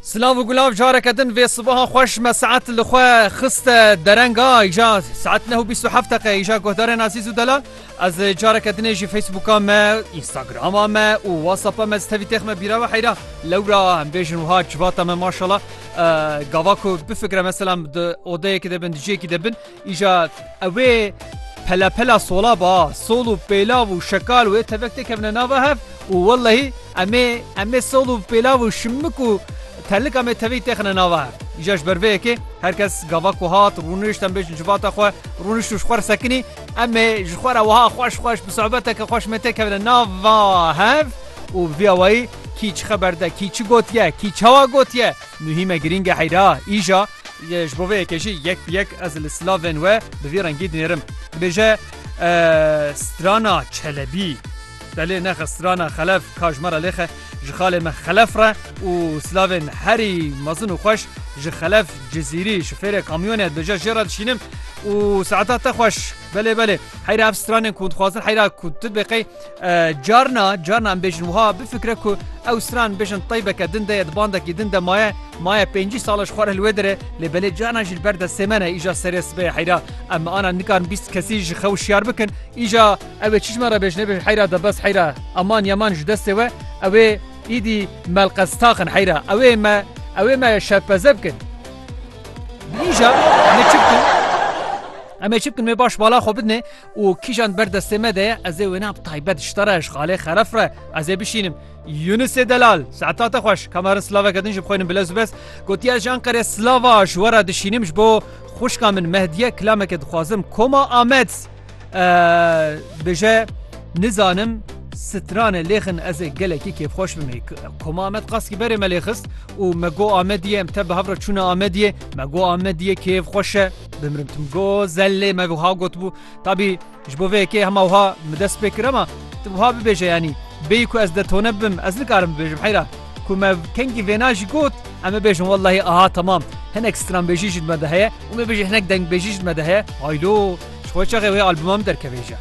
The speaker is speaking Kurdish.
Silav û gulav careke din vê sibaha xweş me saet li xwe xiste derenga îja saet neh û bîst û heft deqe îja guhdarên azîz û delal ez careke dinê jî Facebooka me Instagrama me û WhatsAppa me ez tevî têx me bîra ve heyra lewra em bêjin wiha civata me maşala gava ku bifikre meselam di odeyekî de bin di ciyekî de bin Îja ew ê pelepela sola ba, sol û pêlav û şekal wê tevek tê kevine nava hev û wellehî em ê em ê sol û pêlav û şimik û terlika me tevî têxine nava hev. Îja ji ber vê yekê her kes gava ku hat rûnişt em bêjin civata xwe rûnişt û ji xwe re sekinî em ê ji xwe re wiha xweş xweş bi sobeteke xweş me tê kevine nava hev û bi vî awayî kî çi xeber de kî çi gotiye kî çawa gotiye muhîm e girîng e heyra îja Yê ji bo vê yekê jî yek bi yek ez li silavên we bi vî rengî dinêrim. Dibêje Strana Çelebî. Belê nexe Strana Xelef ka ji me re lêxe ji xalê me Xelef re û silavên herî mezin û xweş ji Xelef Cizîrî şofêrê kamyonê dibêje jê re dişînim û saeta te xweş belê belê heyra ev stranên ku hûn dixwazin heyra ku tu dibê qey Carna carna em bêjin wiha bifikre ku ew stran bêjin teybeke din de ye di bandekî din de maye maye pêncî sala ji xwe re li wê dire lê belê carna jî li ber de sêmene îja serê sibê heyra em bi ana nikarin bîst kesî ji xew şiyar bikin îja ew ê çişma re bêjin bêjin heyra de bes heyra eman yeman ji destê we ew ê îdî melqez taxin heyra ew ê me ew ê me şevpeze bikin îja me çi bikin em ê çi bikin me baş bala xwe bidinê û kîjan ber destê me de ye ez ê wêne bi taybet ji te re ji xalê xeref re ez ê bişînim. Yunusê Delal, Seeta te xweş, ka marin silaveke din ji bi xwe in bilez û bez, gotiye ez ji Enqerê silava ji we re dişînim ji bo xwişka min Mehdiye kilameke dixwazim Koma Amed bije nizanim stranê lêxin ez ê gelekî kêfxweş bim Koma Amed qaskî berê me lêxist û me got Amediyê em te bi hev re çûna Amediyê me got Amediyê kêfxweş e. Bimrim tu go zellê me wiha gotbû tabî ji bo vê yekê hema wiha min dest pê kir ema tu wiha bibêje yanî bêyî ku ez de tone bibim ez nikarim bibêjim heyra ku me kengî vêna jî got em ê bêjin wellahî aha temam hinek stranbêjî jî me de heye û me bêjî hinek dengbêjî jî me de heye haylo ji xwe çaxê wê albuma min derkevêje.